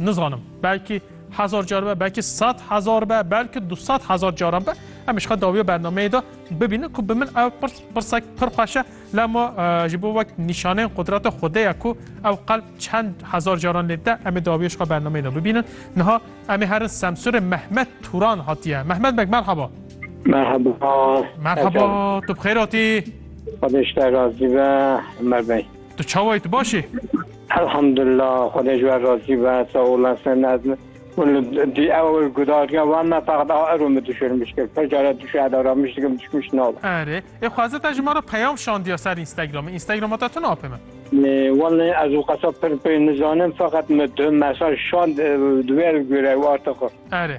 Nizanim. Belkî hezar car be, belkî sed hezar be, belkî du sed hezar caran be. Em ji xwe dawiya bernameyê de bibînin ku bi min ew pirs pirsek pir xweş e, lema ji bo wek nîşaneyên qudrata Xwedê ye ku ew qelb çend hezar caran lê dide, em ê dawiya ji xwe bernameyê de bibînin. Niha em ê herin Semsûrê Mehmet Turan hatiye. Mehmet beg merheba. Merheba. Merheba, tu bi xêr hatî? Xwedê ji te razî be Emer bey. Tu çawa yî tu baş î? Elhamdulillah Xwedê ji we razî be sağ olasın ez hûn li dî ew gudarîya wan me feqet a ero min dişirmiş kir pir care dişe eda ramiş dikim dişmiş nav. Erê ê xweze te ji me re peyam şandiya ser Instagramê. Instagrama te tune apê min. Wallahî ez û qesa pir pê nizanim feqet min tu mesaj şand di wê ev gure û artixir. Erê.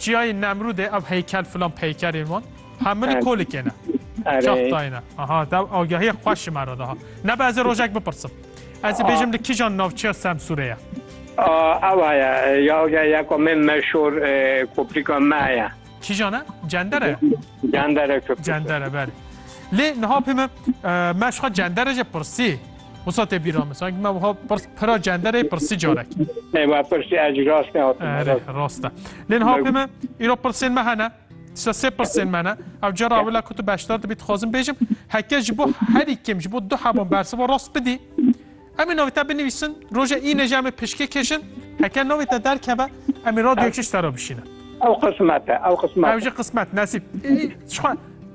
Çiyayê Nemrûdê ev heykel filan peykerên wan hemini kolikê ne. Çap dayne. Aha dew agahiyê xweş ji me re daha. Nebe ez ê rojek bipirsim. Ez ê bêjim li kijan navçeya Semsûrê ye. Ew heye ya agahiyê ya ku me meşhur koprîka me heye. Kijan e? Cender e? Cender e. Cender e berê. Lê niha pê me meşxa cender e jê pirsî. Wisa tê bîra min sanki me wiha pira cenderê pirsî carek. Nê me pirsî ez rast Erê rast e. Lê niha pê me îro pirsên me hene. Tişta sê pirsên me ne. Ev cara ewila ku tu beşdar dibî dixwazim bêjim heke ji bo herî kêm ji bo du hevan bersiva rast bidî. Em ê navê te binivîsin, roja îne jî em ê pişkê kêşin. Heke navê te derkeve em ê radyoyê çi ji te re bişînin. Ew qismet e, ew qismet. Ew jî qismet, nesîb. Ji xwe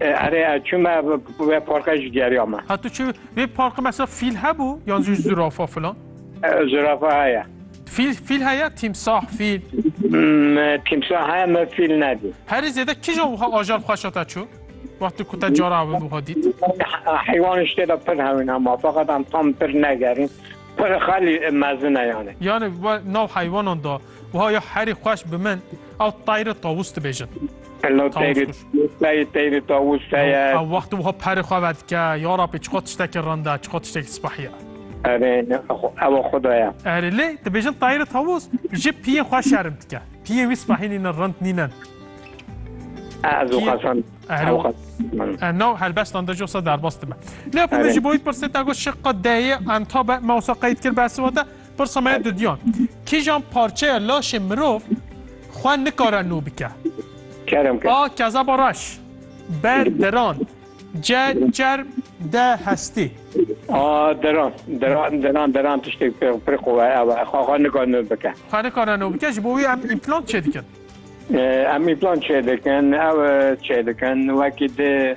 Erê ez çûme wê parka jî geriya me. Ha tu çi vê parka mesela fîl hebû yan jî zirafa filan? Zirafa heye. Fîl fîl heye tîmsah fîl. Tîmsah heye me fîl nedî. Herî zêde kija wiha ajal xweşa te çû? Wextê ku te cara ew wiha dît. Heywan ji tê de pir hewin hema feqet em tam pir negerîn. Pir xelî mezin e yani. Yani nav heywanan da Wiha ya herî xweş bi min ew tayri tawus dibêjin. Hello tayri tayri tayri tawus heye. Ew wextî wiha perê xwe vedike ya Rabbi çiqo tiştekî rinda çiqo tiştekî sipahiye. Erê ew xudaya. Erê lê dibêjin tayri tawus ji piyê xwe şerim dike. Piyê wî sipahî nînin rind nînin. Ez û xasan. Nav helbestan de josa derbas dibe. Lê ku min ji boyî pirsê te got şiqa deyê entabe me wisa qeyd kir bersivata Pirsa me didiyan, kîjan parçeya laşê mirov xwe nikare nû bike? Kerem ke. A. Kezeba reş. B. Deran. C. Çerm. D. Hestî. A. Deran. Deran, deran, deran tiştêk pir, pir qûwe ew e. Xwe xwe nikare nû bike. Xwe nikare nû bike, ji bo wî em împlant çêdikin. Em împlant çêdikin, ew çêdikin wekî di